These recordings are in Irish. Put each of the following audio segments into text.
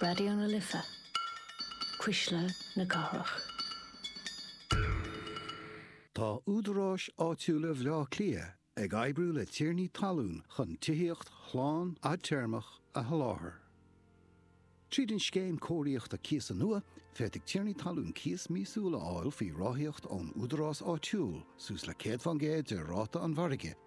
Raidió na Life, Cuisle na Cathrach. Tá údaráis áitiúla Bhaile Átha Cliath ag oibriú le tiarnaí talún chun tithíocht shlán fhadtéarmach a sholáthar. Tríd an Scéim Cóiríochta Cíosa nua, féadfaidh tiarnaí talún cíos míosúil a fháil faoi ráthaíocht ón údarás áitiúil, suas le 100% de ráta an mhargaidh.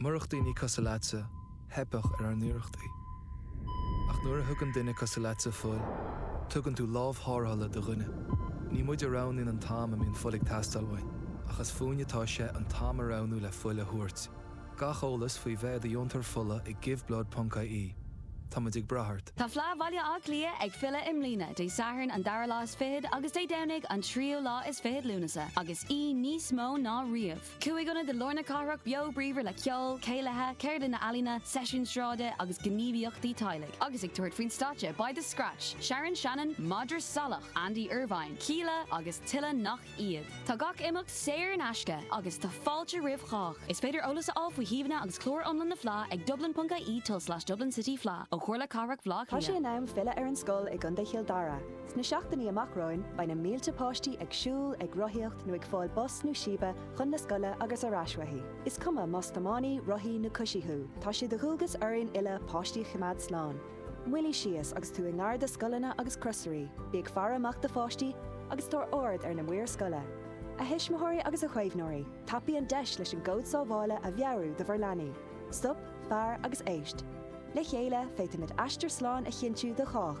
Murach daoine cosúil leatsa, theipfeadh ar ár n-iarrachtaí. Ach nuair a thugann duine cosúil leatsa fuil, tugann tú lámh thárrthála do dhuine. Ní muid a roghnaíonn an t-am a mbíonn fuil ag teastáil uainn, ach is fúinn atá sé an t-am a roghnú le fuil a thabhairt. Gach eolas faoi bheith i do dheontóir fola ag giveblood ponc IE. Tá muid ag brath ort. Tá Fleadh Bhaile Átha Cliath ag filleadh i mbliana, Dé Sathairn an dara lá is fichead agus Dé Domhnaigh an tríú lá is fichead Lúnasa, agus í níos mó ná riamh! Cúig ionad i lár na cathrach beo bríomhar le ceol, céilithe, ceardlanna ealaíona, seisiúin sráide agus gníomhaíochtaí teaghlaigh. Agus ag tabhairt faoin stáitse, beidh The Scratch, Sharon Shannon, Madra Salach, Andy Irvine, Kíla agus tuilleadh nach iad. Tá gach imeacht saor in aisce agus tá fáilte roimh chách. Is féidir eolas a fháil faoi shuíomhanna agus clár iomlán na Fleá ag dublin.ie tulslais dublin city fleá ó Chomhairle Cathrach Bhleá Cliath. Tá sé in am filleadh ar an scoil i gContae Chill Dara. Sna seachtainí amach romhainn beidh na mílte páistí ag siúl, ag rothaíocht nó ag fáil bus nó síbe chun na scoile agus ar ais uaithi. Is cuma más tiománaí, rothaí nó coisí thú, tá sé de dhualgas orainn uile páistí a choimeád slán. Moilligh síos agus tú i ngar do scoileanna agus crosairí, bí ag faire amach do pháistí agus tabhair aird ar na maoir scoile. A thuismitheoirí agus a chaomhnóirí, tapaigh an deis leis an gcód sábhála a mheabhrú do bhur leanaí. Stop, fair agus éist. Le chéile, féadfaimid aistear slán a chinntiú do chách.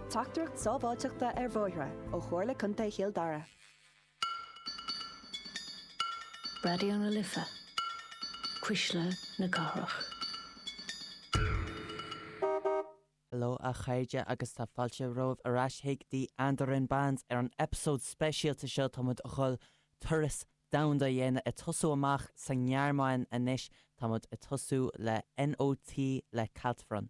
Teachtaireacht sábháilteachta ar bhóithre ó Chomhairle Contae Chill Dara. Raidió na Life, cuisle na cathrach. Hello a chairde agus tá fáilte romhaibh ar ais chuig The Andorran Bands ar an eipeasóid speisialta seo tá muid a dhul turas domhanda a dhéanamh ag tosú amach sa nGearmáin anois. Tá muid ag tosú le NOT le Kaltfront.